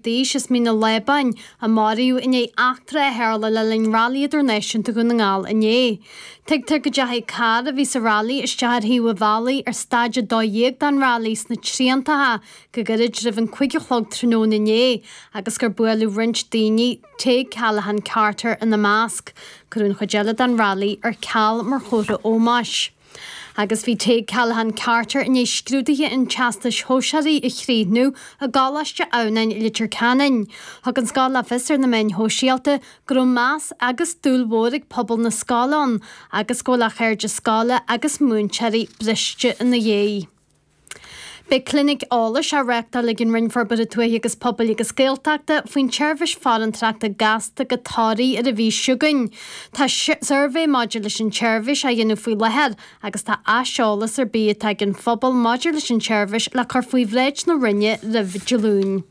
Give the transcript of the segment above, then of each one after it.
d'aois as Mín an Lábáin, a maraíodh i ndiaidh eachtra a tharla le linn Railí Idirnáisiúnta Dhún na nGall inné. Tuigtear go dteachaigh carr a bhí sa railí isteach ar thaobh an bhealaigh ar staid a dó dhéag den railí sna Triantacha go gairid roimh an cúig a chlog tráthnóna inné agus gur buaileadh roinnt daoine, Tadhg Callaghan-Carter ina measc. Cuireadh an chuid eile den railí ar ceal mar chomhartha ómóis. Agus bhí Tadhg Callaghan Carter i ndiaidh scrúduithe an Teastais Shóisearaigh a chríochnú i gColáiste Adhamhnáin, Leitir Ceanainn. Thug an scoil le fios ar na meáin shóisialta go raibh meas agus dúil mhór ag pobal na scoile ann agus go bhfuil a chairde scoile agus múinteoirí briste ina dhiaidh. Beidh clinic eolais á reáchtáil ag an Roinn Forbartha Tuaithe agus Pobail agus Gaeltachta faoin tseirbhís farantóireachta gasta go Toraigh ar an mhí seo chugainn. Tá suirbhé maidir leis an tseirbhís á dhéanamh faoi láthair agus tá aiseolas ar bith atá ag an phobal maidir leis an tseirbhís le cur faoi bhráid na Roinne roimh Dé Luain.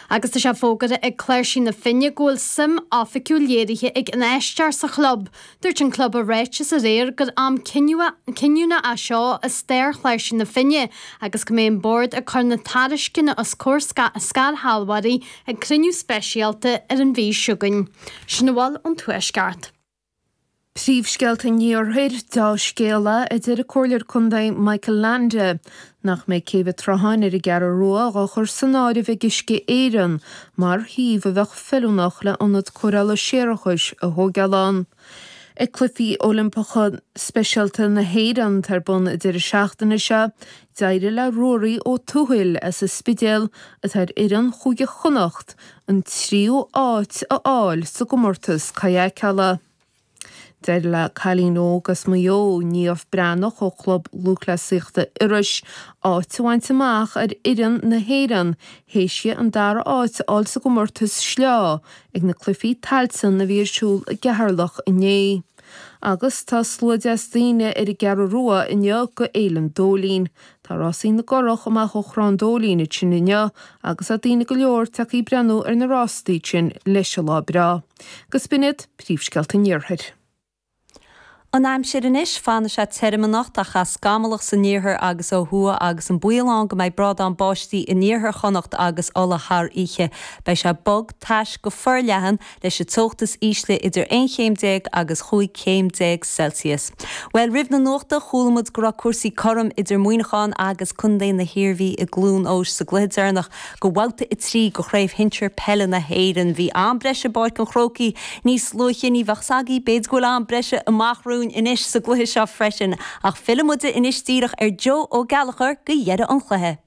Agus tá sé fógartha ag Cláirsigh na Finne go bhfuil suim oifigiúil léirithe ag infheisteoir sa chlub. Dúirt an club i ráiteas aréir gur am cinniúna é seo i stair Chláirsigh na Finne agus go mbeidh an bord ag cur na tairisceana os comhair scairshealbhóirí ag cruinniú speisialta ar an mhí seo chugainn sin a bhfuil ón Tuaisceart Príomhscéalta an Iarthair, Deá-scéala, a deir an Comhairleoir Contae Michael Leainde, nach mbeidh Céibh an tSrutháin ar an gCeathrú Rua á chur san áireamh ag Uisce Éireann mar shuíomh a bheadh feiliúnach le ionad cóireála séarachais a thóigeáil ann ag Cluichí Oilimpeacha Speisialta na hÉireann atá ar bun an deireadh seachtaine seo. D'éirigh le Ruaraí Ó Tuathail as an Spidéal, atá ar fhoireann Chúige Chonnacht, an tríú áit a fháil sa gcomórtas kayakála. D'éirigh le cailín óg as Maigh Eo, Niamh Breathnach ó Chlub Lúthchleasaíochta Iorrais, áit a bhaint amach ar fhoireann na hÉireann théis di an dara áit a fháil sa gcomórtas sleá ag na Cluifí Tailteann a bhí ar siúl i gCeatharlach inné. Agus tá slua deas daoine ar an gCeathrú Rua inniu go Fhéilin Dóilín. Tá Rásaí na gCurrach amach ó Thrá an Dóilín ansin inniu agus tá daoine go leor tagtha ag breathnú ar na rástaí sin leis an lá breá. Agus b'in iad, Príomhscéalta an Iarthair. An aimsir anois, fanfaidh sé tirim anocht ach é scamallach san iarthar agus ó thuaidh agus an baol ann go mbeidh brádán báistí in iarthar Chonnacht agus Uladh thar oíche. Beidh sé bog, tais go forleathan leis an teocht is ísle idir aon chéim déag agus chúig chéim déag Celsius. Bhuel, roimh an nuacht, chuala muid go raibh cúrsaí cothrom idir Muineachán agus Contae na hIarmhí i gCluan Eois sa gcluiche deireanach go bhabhta a trí go Chraobh Shinsear Peile na hÉireann. Bhí am breise i bPáirc an Chrócaigh níos luaithe. Ní bheadh a fhios agaí, b'fhéidir go bhfuil am breise amach romhainn anois sa gcluiche seo freisin. Ach fillfimid anois díreach ar Joe Ó Gallchoir go dheireadh an chluiche.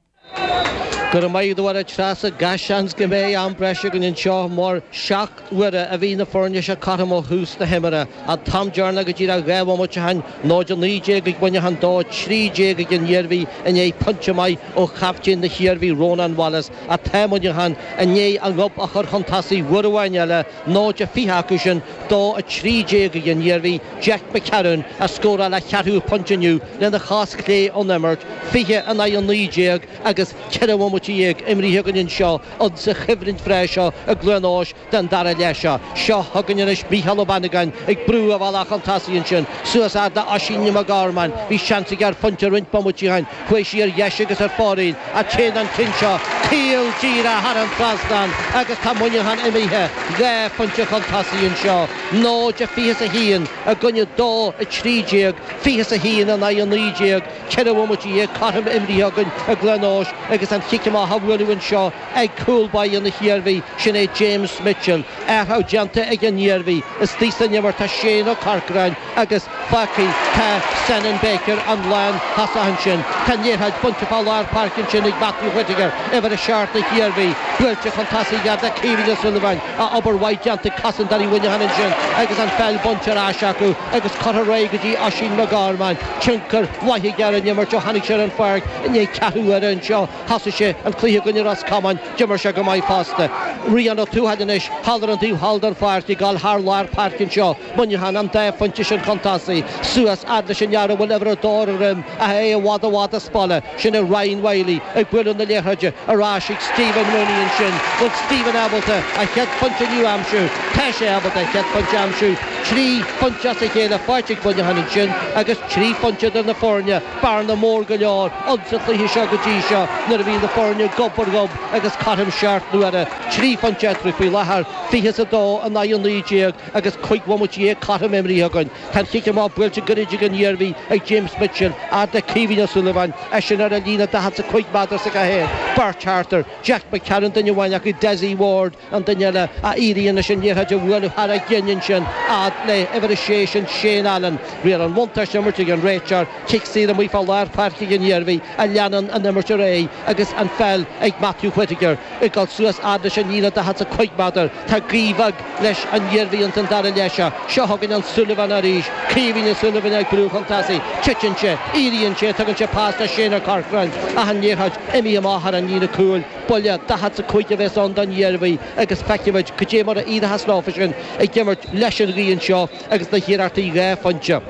Go raibh maith agat, a Treasa. Gach seans go mbeidh am breise againn anseo mar seacht n-uaire a bhí na foirne seo cothrom ó thús na himeartha. An t-am deireanach go díreach dhá bhomaite ó shin, 0-19 ag Muineachán, 2-13 ag an Iarmhí i ndiaidh pointe maith ó chaptaen na hIarmhí, Rónán Wallace, ach tá Muineachán i ndiaidh a ngob a chur chun tosaigh uair amháin eile. 0-20 acu sin, 2-13 ag an Iarmhí Jack McCarron a scóráil a cheathrú pointe inniu lena chos chlé ón imirt, 20 in aghaidh 19 agus ceithre bhomaite dhéag imrithe againn anseo insa choimhlint bhreá seo i gCluain Eois den dara leath seo. Seo chugainn anois Mícheál Ó Banagáin ag brú a bhealaigh chun tosaigh ansin suas fhad le Oisín Mac Gormáin. Bhí seans aige ar phointe roinnt bomaití ó shin. Chuaigh sí ar dheis agus ar fóraoil ach téann an ceann seo caol díreach thar an trasnán agus tá Muineachán imithe dhá phointe chun tosaigh anseo, 0-21 i gcoinne 2-13, 21 in aghaidh 19. Ceithre bhomaite dhéag cothrom imrithe againn i gCluain Eois agus an cic amach á bhualadh anseo ag cúl báire na hIarmhí, sin é James Mitchell. Athrú déanta ag an Iarmhí, istigh san imirt tá Shane Ó Corcráin, agus fágtha tá Senan Baker an lántosach ansin. Tá an liathróid bainte fá lár páirce ansin ag Matthew Whittaker, uimhir a seacht na hIarmhí. Buailte chun tosaigh fhad le Caoimhín Ó Suilleabháin, ach obair mhaith déanta ag cosantóirí Mhuineacháin ansin agus an pheil bainte ar ais acu agus curtha ar aghaidh go dtí Oisín Mac Gormáin. Tionchar mhaith aige ar an imirt ó tháinig sé ar an pháirc i ndiaidh ceathrú uaire anseo. Thosaigh sé an cluiche i gcoinne Ros Comáin, d'imir sé go maith fosta. Rian Ó Tuathail anois thall ar an taobh thall den pháirc ag dul thar lár páirce anseo. Muineachán an dá phointe sin chun tosaigh suas fhad leis an fhear a bhfuil uimhir 2 ar a dhroim ach é i bhfad i bhfad as baile. Sin é Ryan Wylie ag bualadh na liathróide ar ais chuig Stephen Mooney ansin. Bhfuil Stephen ábalta a chéad phointe inniu a aimsiú? Tá sé ábalta a chéad phointe a aimsiú. Trí phointe as a chéile faighte ag Muineachán ansin agus trí phointe idir na foirne, bearna mór go leor insa chluiche seo go dtí seo nuair a bhí na foirne gob ar ghob agus cothrom seacht n-uaire. Trí phointe eatarthu faoi láthair, 20 is 2 in aghaidh 19. agus cúig bhomaite dhéag cothrom imrithe againn. Tá an cic amach buailte goirid ag an Iarmhí ag James Mitchell, fhad le Caoimhín Ó Súilleabháin, eisean ar an líne daichead is a cúig méadar is a ceathair, beirt thart air, Jack McCarron duine amháin acu, Dessie Ward an duine eile, ach éiríonn leis an liathróid a bhualadh thar a gcinn ansin fhad le uimhir a sé sin Shane Allen. Riail an bhuntáiste imirt ag an réiteoir, cic saor amuigh fá lár páirce ag an Iarmhí ach leanann an imirt ar aghaidh agus an pheil ag Matthew Whittaker ag dul suas fhad leis an líne daichead is a cúig méadar. Tá gaoth bheag. leis an Iarmhí ins an dara leath seo. Seo chugainn an Súilleabhán arís. Caoimhín Ó Súilleabháin ag brú chun tosaigh. Titeann sé. Eíríonn sé. Tugann sé pas do Shane Ó Corcráin. Ach an liathróid imithe amach thar an líne cúil. Buille daichead 's a cúig a bheas ann don Iarmhí agus feicfimid cad é mar a éireochas leofa sin ag imirt leis an ghaoth anseo agus na hiarrachtaí dhá phointe.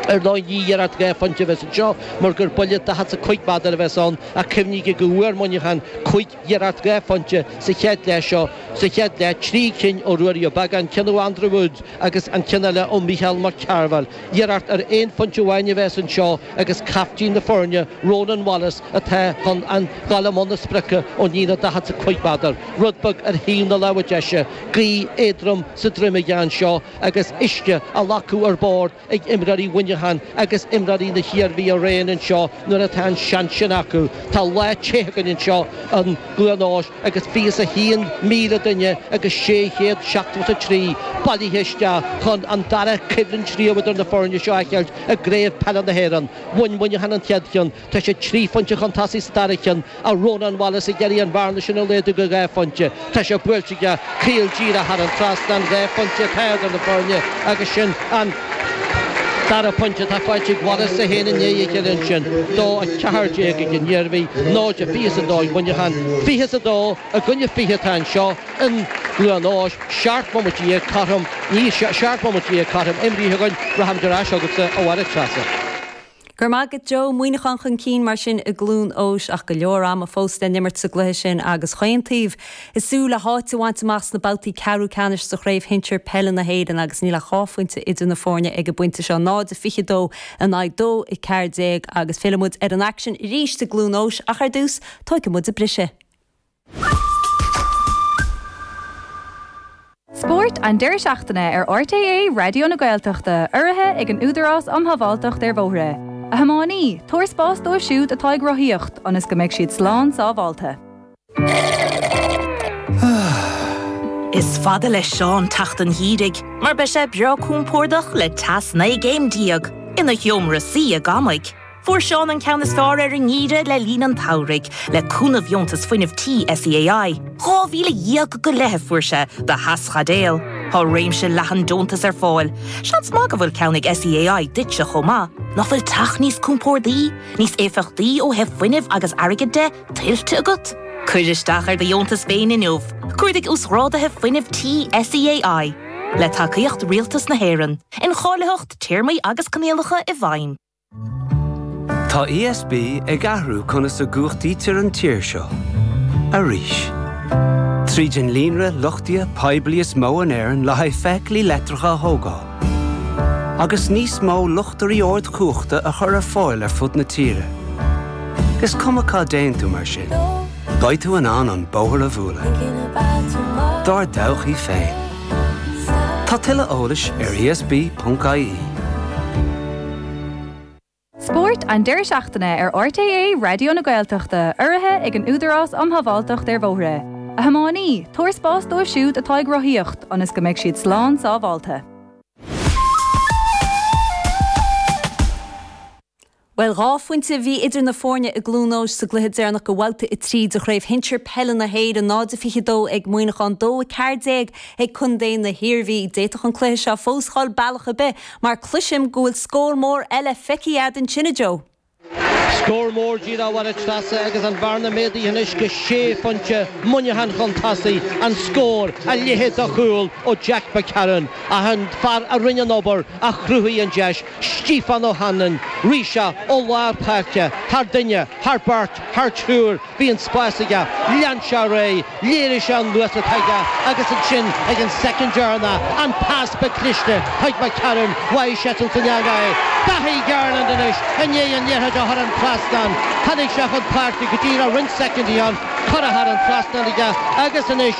Ar ndóigh ní iarracht dhá phointe a bheas anseo mar gur buille daichead 's a cúig méadar a bheas ann ach cuimhnígí go bhfuair Muineachán cúig iarracht dhá phointe sa chéad leath seo Sa chéad leath, trí cinn ó Ruairí Ó Beagán, ceann ó Andrew Woods agus an ceann eile ó Mhícheál Mac Cearbhaill. Iarracht ar aon phointe amháin a bheas anseo agus caiftín na foirne, Ronan Wallace, atá chun a ghabháil i mbun na sprice ón líne daichead 's a cúig méadar, rud beag ar thaobh na láimhe deise. Gaoth éadrom sa droim aige anseo agus uisce á ghlacadh ar bord. ag imreoirí Mhuineacháin agus imreoirí na hIarmhí araon anseo nuair atá an seans sin acu. Tá lá te againn anseo i gCluain Eois agus fiche 's a haon míle duine agus sé chéad seachtó 's a trí bailithe isteach chun an dara coimhlint riamh idir na foirne seo a fheiceáilt i gCraobh Peile na hÉireann. Bhain Muineachán an chéad cheann. Tá sé trí phointe chun tosaigh sa dara ceann ach Rónán Wallace ag iarraidh an bhearna sin a laghdú go dhá phointe. Tá sé buailte aige caol díreach thar an trasnán, dhá phointe atá idir na foirne agus sin an dara pointe atá faighte ag Wallace, 1 i ndiaidh a chéile ansin, 2, 14 ag an Iarmhí, 0, 22 ag Muineachán. Fiche is a dó i gcoinne fiche atá anseo i gCluain Eois. Seacht mbomaite dhéag cothrom, níl, seacht mbomaite dhéag cothrom imrithe againn. Rachaimid ar ais chugatsa, a Mháire Treasa. Go raibh maith agat Joe, Muineachán chun cinn mar sin i gCluain Eois ach go leor ama fós le n-imirt sa gcluiche sin agus chaon taobh ag súil le háit a bhaint amach sna babhtaí ceathrú ceannais sa Chraobh Shinsir Peile na hÉireann agus níl ach dhá phointe idir na foirne ag an bpointe seo, 0-22 in aghaidh 2-14 agus fillfidh muid ar an aicsean arís i gCluain Eois ach ar dtús, tóigfidh muid briseadh. Spórt an deireadh seachtaine ar RTÉ Raidió na Gaeltachta, urraithe ag an Údarás um Shábháilteacht ar Bhóithre. A thiománaí, tabhair spás dóibh siúd atá ag rothaíocht ionas go mbeidh siad slán sábháilte. Is fada le Seán teacht an gheimhridh mar beidh sé breá compordach le teas 19 céim ina sheomra suí ag amaigh. Fuair Seán an ceann is fearr ar an ngeimhreadh le linn an tsamhraidh, le cúnamh dheontas fuinnimh tí SEAI. Dhá mhíle dhéag go leith a fuair sé do theaschaidéal. Tá réimse leathan deontas ar fáil. Seans maith go bhfuil ceann ag SEAI duitse chomh maith. Nach bhfuil teach níos compordaí, níos éifeachtaí ó thaobh fuinnimh agus airgid de, tuillte agat? Cuir isteach ar do dheontas féin inniu. Cuardaigh Uasghrádaithe Fuinnimh Tí SEAI. Le tacaíocht Rialtas na hÉireann. Incháilitheacht, Téarmaí agus Coinníollacha i bhfeidhm. Tá ESB ag athrú conas a gcumhachtaítear an tír seo. Arís. Tríd an líonra luchtaithe poiblí is mó in Éirinn le haghaidh feithiclí leictreacha a thógáil. Agus níos mó luchtairí ardchumhachta a chur ar fáil ar fud na tíre. Is cuma cá dtéann tú mar sin, beidh tú in ann an bóthar a bhualadh. Dár dtodhchaí féin. Tá tuilleadh eolais ar ESB.ie. Spórt an deireadh seachtaine ar RTÉ Raidió na Gaeltachta, urraithe ag an Údarás um Shábháilteacht ar Bhóithre. A thiománaí, tabhair spás dóibh siúd atá ag rothaíocht ionas go mbeidh siad slán sábháilte. Bhuel dhá phointe a bhí idir na foirne i gCluain Eois sa gcluiche deireanach de Bhabhta 3 de Chraobh Shinsir Peile na hÉireann, 0-22 ag Muineachán, 2-14 ag Contae na hIarmhí. D'fhéadfadh an cluiche seo fós dhul bealach ar bith mar cloisim go bhfuil scór mór eile feicthe agat ansin, a Joe. Scór mór díreach, a Mháire Treasa, agus an bhearna méadaithe anois go sé phointe, Muineachán chun tosaigh, an scór, a leithéid de chúl ó Jack McCarron, ach an fear a rinne an obair, a chruthaigh an deis. Stephen O'Hanlon, rith sé ó lár páirce, thar duine, thar beirt, thar triúr, bhí an spás aige, lean sé ar aghaidh, léirigh sé an luas atá aige agus ansin ag an soicind deireanach, an pas ba chliste chuig McCarron, bháigh seisean san eangach é. Dáithí Garland anois i ndiaidh an liathróid a chur thar an trasnán, tháinig sé chun páirce go díreach roinnt soicindí ó shin, curtha thar an trasnán aige agus anois,